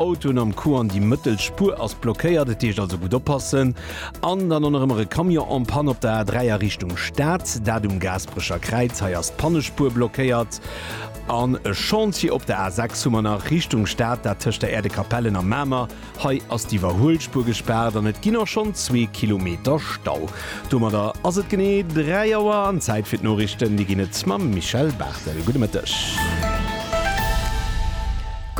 Autoen am Coup an déi mëttel Spuer ass blockéiert, et heescht also gutt oppassen. An dann och nach ëmmer e Camion en Panne op der A3 a Richtung Stad, dat um Gaasperecher Kräiz. Hei ass d'Pannespuer blockéiert. An e Chantier op der A6 hu mer nach Richtung Stad, dat tëscht der Äerdekapellen a Mamer. Hei ass d'Iwwerhuelspuer gespaart an et ginn och schonn zwee Kilometer Stau. Domadder ass et genee 3 Auer an Zäit fir d'Noriichten. Déi ginn et mam Michèle Barthel. Gudde Mëtteg.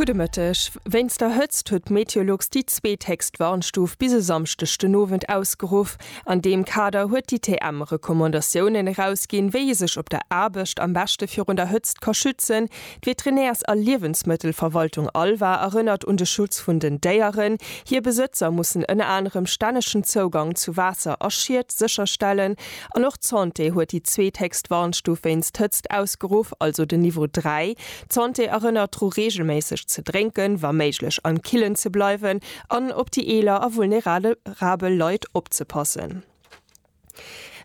Gudde Mëtteg. Wéinst der Hëtzt huet d'Meteolux déi zweet héchst Warnstuf bis e Samschdeg den Owend ausgeruff. An deem Kader huet d'ITM Recommandatiounen erausginn, wéi ee sech op der Aarbecht am beschte virun der Hëtzt ka schützen. D'Veterinärs a Liewensmëttelverwaltung ALVA erënnert un de Schutz vun den Déieren. Hir Besëtzer mussen ënner anerem stännegen Zougang zu Waasser a Schied sécherstellen. An och d'Santé huet déi zweethéchst Warnstuf wéinst Hëtzt ausgeruff, also den Niveau 3. D'Santé erënnert dru reegelméisseg ze drénken, wa méiglech am Killen ze bleiwen an op déi eeler a vulnerabel Leit opzepassen.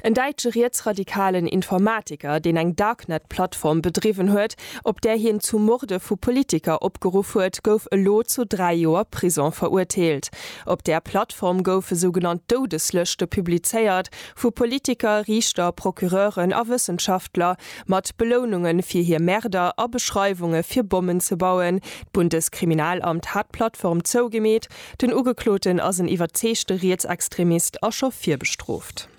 En däitsche rietsradikalen Informatiker, deen eng Darknet-Plattform bedriwwen huet, op där hien zu Morde vu Politiker opgeruff huet, gouf elo zu dräi Joer Prison verurteelt. Op där Plattform goufe sougenannt Doudeslëschte publizéiert, vu Politiker, Riichter, Procureuren a Wëssenschaftler, mat Beloununge fir hir Märder a Beschreiwunge fir Bommen ze bauen. D'Bundeskriminalamt hat d'Plattform zougemeet Den Ugekloten ass en iwwerzeegte Rietsextremist a scho virbestrooft.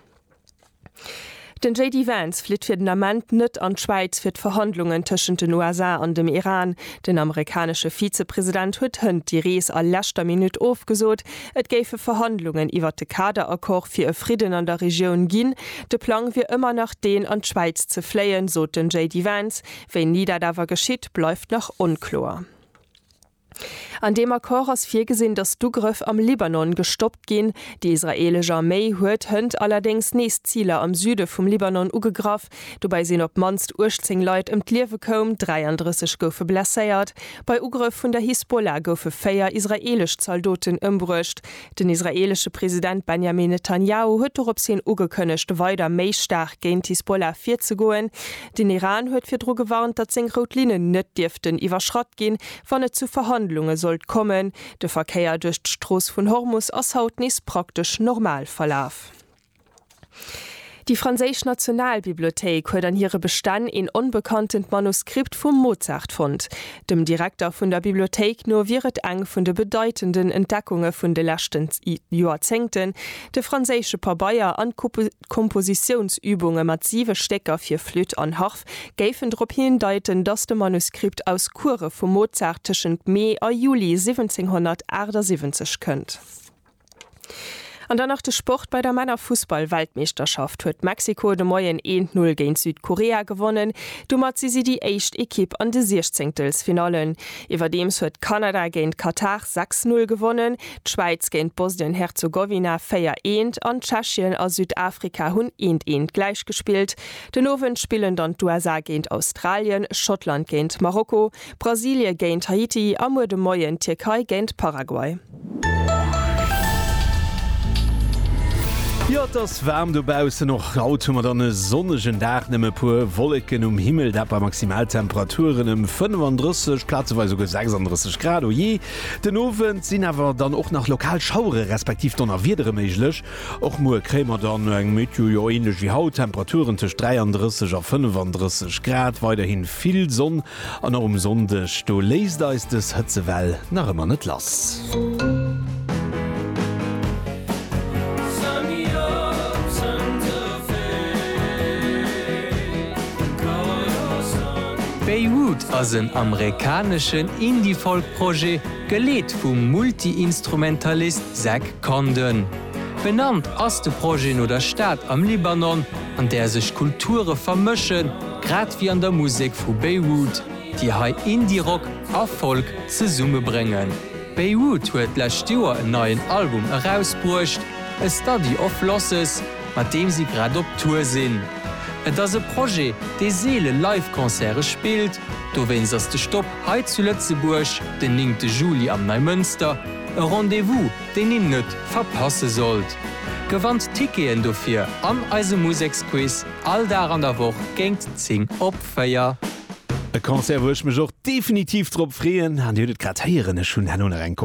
Den JD Vance flitt fir den Ament net an d'Schwäiz fir d'Verhandlungen tëschent den USA an dem Iran. Den amerikanesche Vizepresident huet hënt déi Rees a leschter Minutt ofgesot. Et géife Verhandlungen iwwert de Kaderaccord fir e Fridden an der Regioun ginn. De Plang wier ëmmer nach deen, an d'Schwäiz ze fléien, sot den JD Vance. Wéini dat awer geschitt, bleift nach onkloer. An deem Accord ass virgesinn, datt d'Ugrëff am Libanon gestoppt ginn. Déi israeelesch Arméi huet hënt allerdéngs nees Ziler am Süde vum Libanon ugegraff. Dobäi sinn op d'mannst 18 Leit ëm d'Liewe koum, 33 goufe blesséiert. Bei Ugrëff vun der Hisbollah goufe véier israeelesch Zaldoten ëmbruecht. Den israeelesche President Benjamin Netanjahu huet dorops hin ugekënnegt, weider méi staark géint d'Hisbollah virzegoen. Den Iran huet virdru gewarnt, datt seng rout Linnen net dierften iwwerschratt ginn, wann et zu Verhandlunge sollt kommen. De Verkéier duerch d'Strooss vun Hormus ass haut nees praktesch normal verlaf. Déi franséisch Nationalbibliothéik huet an hire Bestänn een onbekantent Manuskript vum Mozart fonnt. Dem Direkter vun der Bibliothéik no wier et eng vun de bedeitenden Entdeckunge vun de leschten Joerzéngten, de franséische Pabeier an d'Kompositiounsübunge mat siwe Stécker fir Flütt an Harf géifen drop hindeiten, datt de Manuskript aus Courë vum Mozart tëschent Mee a Juli 1778 kënnt. An dann nach de Sport, Bei der Männerfussball-Weltmeeschterschaft huet Mexiko de Moien een 0 géint Südkorea gewonnen. Domat si si déi éischt Ekipp an de Siechzéngtelsfinallen. Iwwerdeems huet Kanada géint Katar 6, 0 gewonnen, d'Schwäiz géint Bosnien-Herzogowina 4, 1 an Tschechien a Südafrika hunn 1, 1 gläich gespillt. Den Owend spillen dann d'USA géint Australien, Schottland géint Marokko, Brasilie géint Haiti a muer de Moien d'Tierkei géint Paraguay. Jo, et ass waarm dobaussen. Och haut hu mer dann e sonnegen Dag, nëmme e puer Wolleken um Himmel, dat bei Maximaltemperaturen ëm 35, plazeweis esouguer 36 Grad. O jee, den Owend sinn awer dann och nach lokal Schauere respektiv Donnerwiedere méiglech. Och muer kréie mer dann eng Météo, jo, änlech wéi haut, Temperaturen tëscht 33 a 35 Grad, weiderhi vill Sonn. An och um Sonndeg do léisst eis dës Hëtzewell nach ëmmer net lass. Beirut ass en amerikaneschen Indie-Folk-Projet, geleet vum Multi-Instrumentalist Zach Condon. Benannt ass de Projet no der Stad am Libanon, an där sech Kulture vermëschen, Grad wéi an der Musek vu Beirut, déi hei Indie-Rock a Folk zesummebréngen. Beirut huet d'lescht Joer en neien Album erausbruecht, A Study of Losses, mat deem si grad op Tour sinn. Et ass e Projet, dee seele Live-Concerte spillt, dowéinst ass de Stop hei zu Lëtzebuerg den néngte Juli am Neimënster e Rendez-vous, deen een net verpasse sollt. Gewannt Ticketen dofir an eisem Museksquiz. All Dag an der Woch géint 10 op 4. E Concert wou ech mech och definitiv drop freeën an dir hutt et grad héieren, ech hunn herno nach eng Kopei.